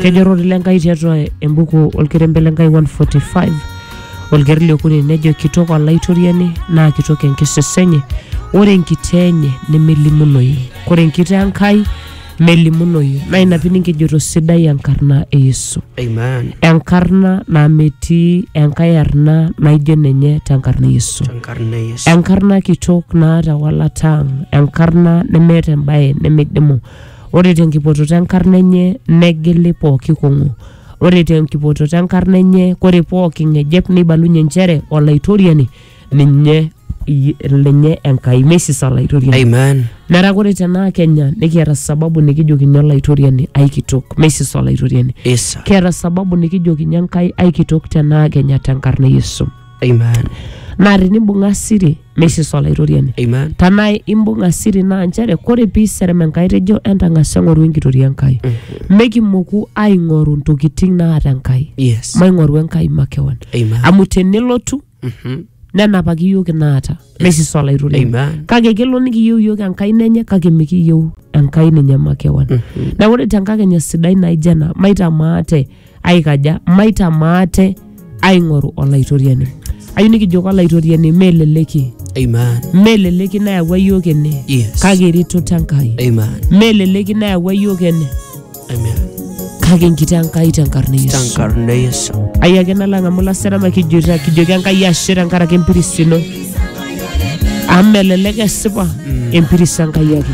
kejo ororei le Nkai tiatua embuku olkerembe le Nkai 145 olkereri le okuni nejo kitok olaitoriani naa kitok enkisisa enye ore enkitaa enye nemelimunoyu ore enkitaa Enkai melimunoyu naa ina pii nikijoto sidai enkarna e Yesu Amen. enkarna naa metii enkae arna naijo ninye tenkarna e Yesu Tenkarna e Yesu. enkarna kitok naata walata ang enkarna nemeeta embaye nemeidimu Ore tenkipototo enkarna enye negili pooki kong'u. Ore tenkipototo enkarna enye kore pooki ng'ejep neibalunye nchere Olaitoriani ninye i- lenye Enkai meisisa Olaitoriani. Amen. Metaa kore tenaa Kenya nikiata sababu nikijokinye Olaitoriani aikitok meisisa Olaitoriani. Isa. Kiata sababu nikijokinye Enkai aikitok tenaa Kenya tenkarna e Yesu. Amen. naa tenimbung'a siri meisisa olaitoriani Amen. tanaa imbung'a siri naa nchere kore piiserem enkai tejo entang'asa eng'oru enkitoria enkai mekimoku aing'oru ntokitin naata enkai Yes. maing'oru enkai makewan Amen. amu tenelotu Mhm. nenapaki iyiook inaata meisisa olaitoriani Amen. kake kelo nikiyieu iyiook enkai nenye kake mikiyieu enkai ninye makewan neeku ore tenkakenya sidai naijo ena maitamaate aikaja maitamaa ate aing'oru olaitoriani ayieu nikijoki olaitoriani meleleki Amen. meleleki nayawua yiok ene Yes. kake eretoto enkai Amen. meleleki nayawua yiok ene Amen. kake enkiti enkai tenkarna e yesu Tankarna e Yesu. ai ake nalang amu laserama kijoita kijoki enkai ashe tenkaraki empiris ino amu melelek esipa empiris enkai ake